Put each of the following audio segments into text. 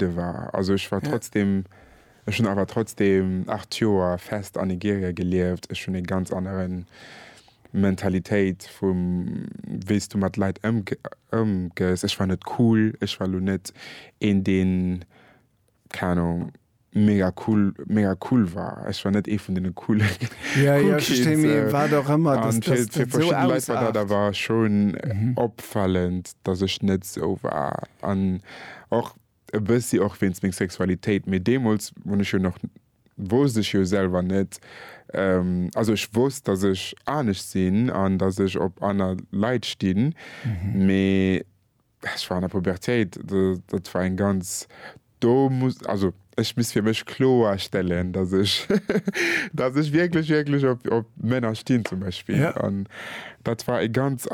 de war. Also ech war trotzdem, ech hunn awer trotzdem 8 Joer fest an Nigeria gelieft. Ech hunn ee ganz anere Mentalitéit vum, wéi s du mat Leit ëmgees. Ech war net cool, ech war elo net een, deen, keng Anung, mega cool, mega cool war. Ech war net ee vun deene coole, cool Kids. An fir verschidde Leit war dat awer schonn opfälend, datt ech net esou war. Och e bëssi och wéinst meng Sexualitéit, mee deemools hunn ech jo nach, wousst ech jo selwer net, also ech wousst, datt ech anescht sinn an datt ech op aner Leit stinn, mee ech war an der Pubertéit, dat war eng ganz, do muss, also. Ech muss fir mech kloerstellen, dass ech, dass ech wierklech, wierklech op, op Männer stinn zum Beispill. Ja. An dat war e ganz,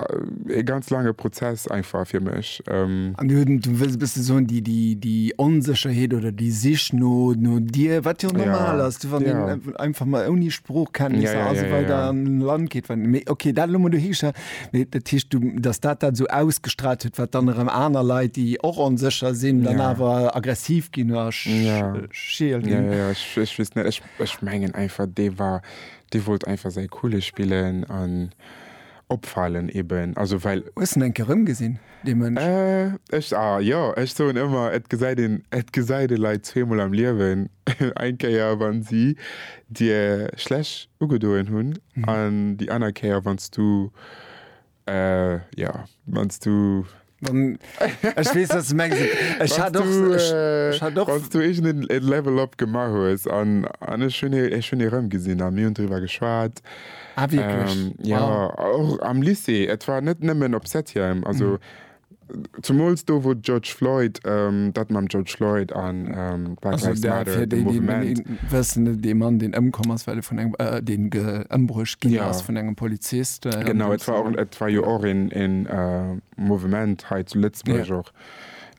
e ganz laange Prozess einfach fir mech. An du, du wëlls e bësse soen, déi, déi, déi Onsécherheet oder déi Sich no, no dir, wat jo och normal ass, du, wann een einfach mol ouni Sproochkenntnisser a sou weider an en Land geet, wann, mee okay, dat elo mol dohi gestallt. Mee dat heescht, du, dass dat dat esou ausgestrahlt huet, wat dann erëm aner Leit, déi och onsécher sinn, dann Ja. awer aggressiv ginn oder sch Ja. scheel Ja, ginn. ja, ja, ech, ech weess net. Ech, ech mengen einfach, dee war, dee wollt einfach säi Coole spillen an opfalen eben. Also well. Hues de en eng Kéier erëmgesinn? dee Mënsch. Äh, ech, a jo, ech soen ëmmer, et gesäit een, et gesäit ee Leit zweemol am Liewen, eng Kéier, wa si dir schlech ugedoen hunn, an déi aner Kéier, wann s du, äh, jo, wann s du, Wann, ech weess, wat s du mengs, et, ech hat och, ech, ech hat och. Wann s du iergend en, en Level-Up gemaach hues, an, an ech hunn e, ech hunn e rëmgesinn, a mir hunn driwwer geschwat. Ah, wirklich? Ähm, ja, wow. och am Lycée. Et war net nëmmen op Septième. Also, mhm. zumools do, wou George Floyd, ähm, dat mam George Floyd an ähm, Black also, Lives Matter, de, de Movement. Wëssen, de Mann, den ëmkomm ass, well vun engem, äh, den geëmbruecht ginn ja. ass vun engem Polizist. Äh, genau, et war, auch, et war jo och en, en äh, Movement hei zu Lëtzburg ja. och.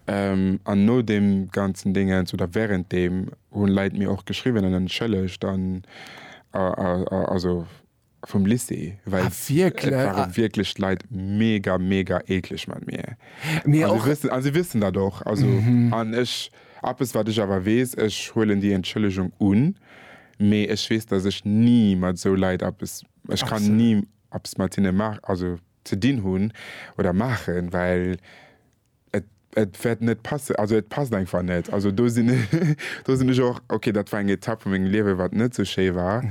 Ähm, an no dem ganzen Dingens oder während dem hunn Leit mir och geschriwwen an en Schëlleg, dann also vum Lycée, well ah, wirklich? waren ah. wirklich Leit mega mega eklig mat mir. Mir also, wissen, also wissen da doch also mhm. an ech Appes wat ech awer wees, ech huelen die Entschëllegung un, mee ech wees, dat ech nie mat so Leiit Appes Ech kann nie Appes mat hinne mach also ze dinn hunn oder machen, well Et wäert net passen, also et passt einfach net. Also do sinn do sinn ech och, okay, dat war eng Etapp vu mengem Liewe wat net sou schéi war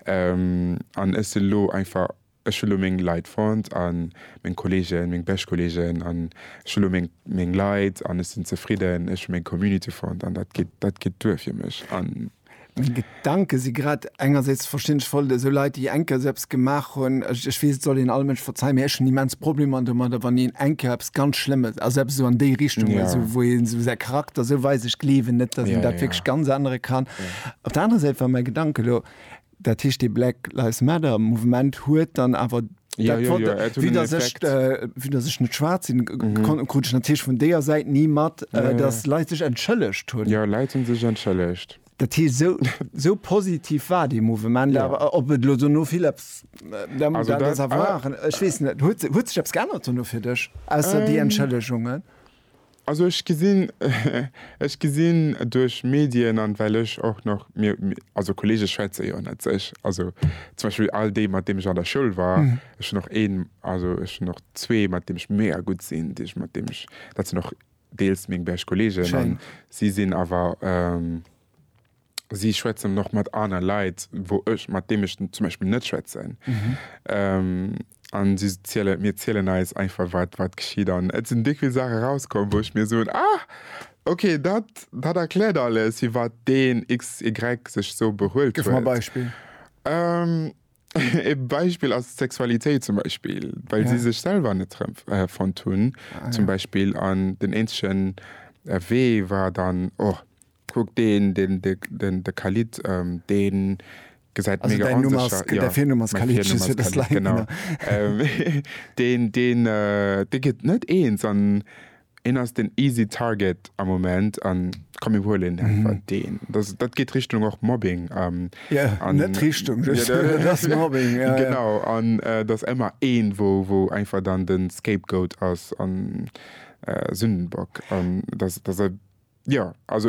an ech si lo einfach, ech hu lo meng Leit fonnt a meng Kolleegen, meng bescht Kolleegen an ech hu lo meng meng Leit an ech sinn zefridden. Ech hu meng Community fonnt an dat geet dat geet duer fir mech. Meng Gedanken si grad engersäits verständlech voll der esou Leit déi eng Kéier esou eppes gemaach hunn. Ech weess et soll een alle Mënschen verzeihen, mee ech hunn immens Problemer domadder wann een eng Kéier eppes ganz Schlëmmes, also eppes esou an déi Richtung, esou wou een esou säi Charakter esou weist. Ech gleewen net, dass een dat wierklech ganz ännere kann. Op der anerer Säit war mäi Gedanken elo, Dat heescht dee Black Lives Matter Mouvement huet dann awer, Ja, dat jo, wollt jo, de, et huet vue en datt ech, Effekt. äh, vue datt ech net schwaarz sinn, k, kon, krut ech natierlech vun deeër Säit ni mat, äh, Ja, datt ja. Leit sech entschëllegt hunn. Jo, Leit hunn sech entschëllegt. Dat heescht, esou, esou positiv war dee Mouvement Jo. awer. Ob et elo dono vill eppes, äh, da, Also dat ass dat, awer, ah. ech weess net, huet, huet sech eppes geännert dono fir dech, ausser déi Ähm. Entschëllegungen? Also ech gesinn, ech gesinn duerch Medien an well ech och nach, mir, also Kollege schwätze jo net sech, also zum Beispill all déi mat deem ech an der Schoul war, ech hunn och een, also ech hunn och zwee mat deem ech mega gutt sinn, déi ech, mat deem ech, dat sinn och deels meng bescht Kollegen an si sinn awer. si schwätzen och mat aner Leit, wou ech, mat deem ech zum Beispill net schwätzen. An si zielen, mir zielen eis einfach, wat, wat geschitt. An et sinn déck vill Saache rauskomm, wou ech mir soen, Ah, okay, dat, dat erkläert alles, firwat deen XY sech esou behuelt huet. Gëff mer e Beispill. E Beispill ass d'Sexualitéit zum Beispill, well si sech selwer net erëm fonnt hunn zum Beispill. An den eenzegen Wee war dann, Oh, Kuck deen den de Khalid deen gesäit mega onsécher jo däi Virnumm ass Khalid just fir dass d'Leit genau deen deen dee gëtt net eens an een ass den easy target am Moment an komm mir huelen deen einfach deen dass dat geet Richtung och Mobbing an jo net Richtung just et ass Mobbing jo jo genau an dass ëmmer een wou wou einfach dann den scapegoat ass an Sündenbock an dass dass jo also.